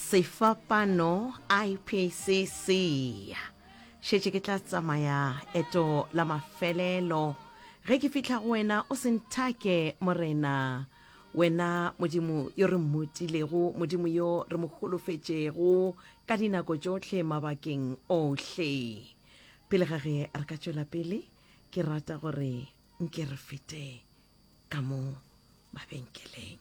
sefapano ipc se šetše ke tla tsamaya eto la mafelelo ge ke fihla go wena o se nthake morena wena modimo yo re mmutilego modimo yo re mo holofetšego ka dinako tšohle mabakeng ohle pele ga ge re ka tšwela pele ke rata gore nke re fete ka mo mabenkeleng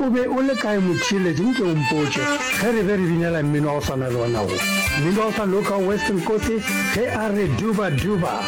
O be o le kae motheeletši nke o mpotše ge re be re binela mmino wa go swana le wona wo, mmino wa go sa loka Weston Kosi ge a re Duba Duba.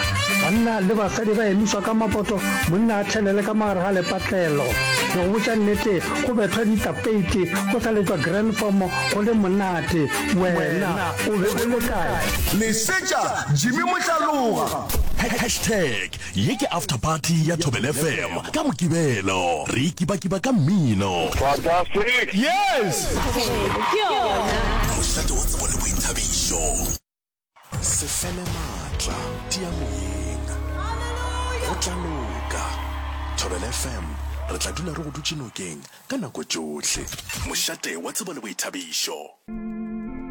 Banna le basadi ba emišwa ka mapoto, monna a thelele ka mogare ga lepatlelo. Ke go botša nnete go bethwa ditapeiti go sa letšwa Granform go le monate. Wena o be o le kae? Lesetša Jimmy Mohlaloga. Hashtag Ye ke After Party ya Thobela FM ka Mokibelo. Re ikibakiba ka mmino. Fantastic! Yes! Thobela ke yona. Mošate wa tsebo le boithabišo. Se fele matla, tia moyeng. Go tla loka. Thobela FM, re tla dula re go dutše nokeng ka nako tšohle. Mošate wa tsebo le boithabišo.